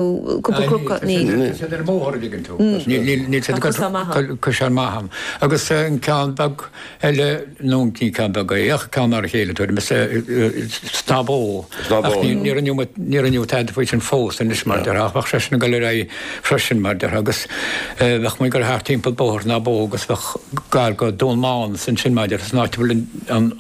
cúpla clocha, ní. Níl siad ar an mbóthar an bhfuil a fhios a'd. Níl siad ag cur an-mhaith ann. Agus an ceann beag eile, bhuel ní ceann beag é ach ceann mar a chéile, Tuairín na mBó. Ach níor rinneadh tada faoi sin fós anois mar déarfá, bheadh sé sin ag dul ar aghaidh freisin mar déarfá agus bheadh muid ag dul thart timpeall bóthar na mbó agus bheadh gar go Dún Mán is ansin mar déarfá, san áit a bhfuil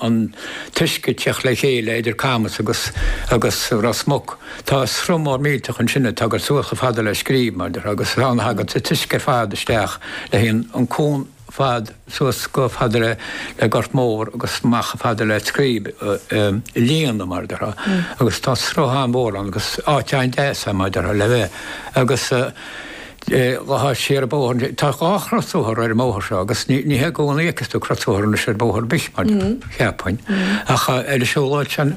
an t-uisce ag teacht le chéile idir Camas agus Ros Muc. Tá sruth mór millteach ansin ag tabhairt suas chomh fada le Scríb, mar déarfá, agus is ann a thaganns an t-uisce ar fad isteach le líonadh, an cuan ar fad suas chomh fada le Gort Mór agus amach chomh fada le Scríb a líonadh, mar déarfá. Agus tá sruth an-mhór ann agus áit an-deas é, mar déarfá, le bheith. Agus siar an bóthar, tá dhá chrosbhóthar ar an mbóthar seo agus ní hé i gcónaí a fheiceas tú crosbhóthar anois ar bhóthar ar bith, mar déarfá, cheapfainn, ach ar an siúlóid sin.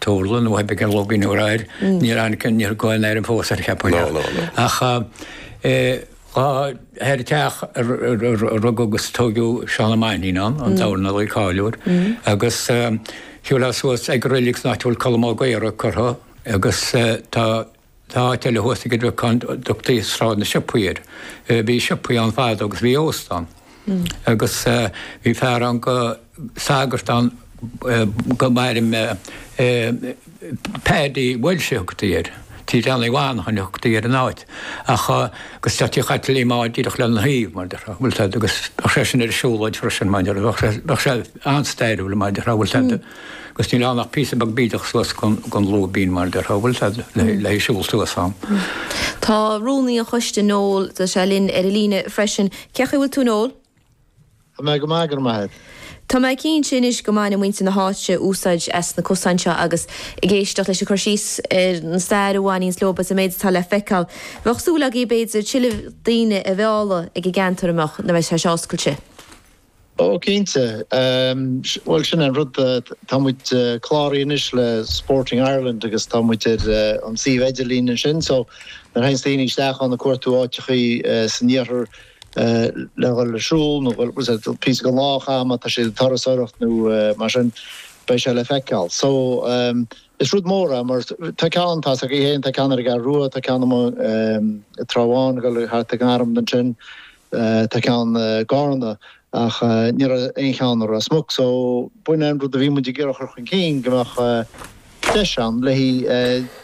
Turlach nó ainm beag, an logainm úr air, níor tháinig an, níl aon ainm fós air cheapfainn ach, ach thar an teach a rugadh agus a tóigeadh Seán Ó Mainnín ann, an dornálaí cáiliúil, agus shiúlfá suas ag an reilig san áit a bhfuil Colm Ó Gaora curtha agus tá, Tá áit eile thuas ag an Aill Bhuí ann a dtugtaí Sráid na Siopaí air. Bhí siopaí ann fadó agus bhí óstán. Agus bhí fear ann go, sagart ann go maire mé, Paddy Walsh a thugtaí air. Tigh Dan Uí Mhainnín a thugtaí ar an áit. Ach, agus tá tigh Chaitlín Liam ann díreach lena thaobh, mar déarfá, an bhfuil a fhios a'd, agus bheadh sé sin ar an siúlóid freisin, mar déarfá. Bheadh sé an-stairiúil, mar déarfá, an bhfuil a fhios a'd. 'Gus níl ann ach píosa beag bídeach suas gon lúibín mar a déarfá, an bhfuil fhios a'd, le siúl suas ann. Tá rúnaí an choiste, Noel, tá sé linn ar an líne freisin. Cén chaoi a bhfuil tú Noel? Tá mé go maith, go raibh maith a'd. Tá mé cinnte anois go mbaineanns muintir na háite úsáid as na cosáin seo agus ag éisteacht leis an gcur síos ar an stair a bhaineanns leo agus an méid atá le feiceáil. Bheadh súil agaibh b'fhéidir tuilleadh daoine a mhealladh ag an gceantar a mbeadh, nuair a bheidh sé seo oscailte. Ó, cinnte. Bhuel, sin é an rud, tá muid cláraithe anois le Sporting Ireland agus tá muid ar an suíomh idirlín ansin so nuair a théanns daoine isteach ann ag cuartú áiteachaí san iarthar le dhul ag siúl nó píosa den lá a chaitheamh má tá siad ag turasóireacht nó mar sin, beidh sé le feiceáil. So, is rud mór é mar tá ceann, tá's a'd féin, tá ceann ar an gCeathrú Rua, tá ceann amuigh sa Trá Bháin ag dul thart ag an Droim ansin, Tá ceann i gCarna ach ní raibh aon cheann i Ros Muc so b'shin é an rud a bhí muid ag iarraidh a chur chun cinn, go mbeadh deis ann le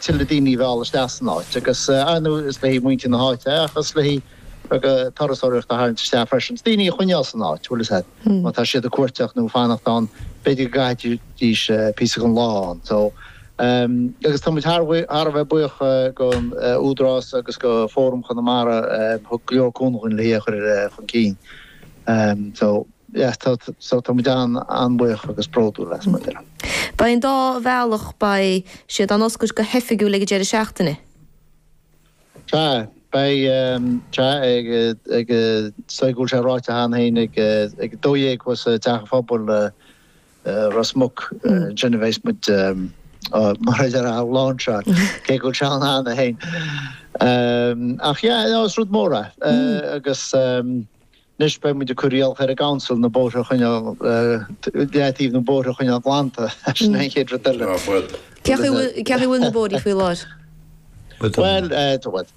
tuilleadh daoine a mhealladh isteach san áit agus ar ndóigh is le muintir na háite é ach is le beagán turasóireachta a tharraingt isteach freisin, daoine a choinneáil san áit, an bhfuil a fhios a'd, má tá siad ag cuartaíocht nó ag fanacht ann b'fhéidir go gcaithfidís píosa den lá ann so. Agus tá muid thar a bheith buíoch den Údarás agus de Fhóram Chonamara a thug go leor cúnaimh dhúinn le hí a chur chun cinn. So, yeah, so tá muid an-bhuíoch agus bródúil as, mar a déarfá. Beidh an dá bhealach, beidh siad á n-oscailt go hoifigiúil ag an deireadh seachtaine? Sea, beidh, sea, ag, ag, sílim go bhfuil sé ráite cheana féin ag, ag a dó dhéag thuas i dTeach an Phobail, Ros Muc, déanfaidh muid, mar a déarfá, an lainseáil, cé go bhfuil sé ann cheana féin. Ach yeah, no, ó is rud mór é. Agus anois beidh muid ag cur iallach ar an gCouncil na bóithre a choinneáil, leataobh na bóithre a choinneáil glanta, sin é an chéad rud eile. Cén chaoi a bhfuil na bóithrí faoi láthair? Bhuel, tá muid.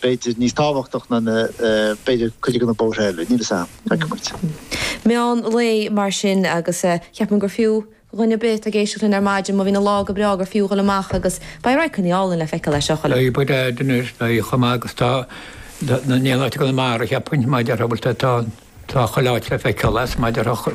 b'fhéidir níos tábhachtach ná na, b'fhéidir, cuid de na bóithre eile, níl 'fhios a'm, feicfidh muid. Meán lae mar sin agus cheapfainn gur fiú dhuine ar bith atá ag éisteacht linn ar maidin má bhíonn an lá go breá gur fiú dhul amach agus beidh radharcannaí álainn le feiceáil as. Ó cinnte beidh, beidh a'd anois, beidh, chomh maith agus tá, tá, níl áit i gConamara, cheapfainn, mar a déarfá, bhuel tá, tá, tá chuile áit le feiceáil as, mar a déarfá,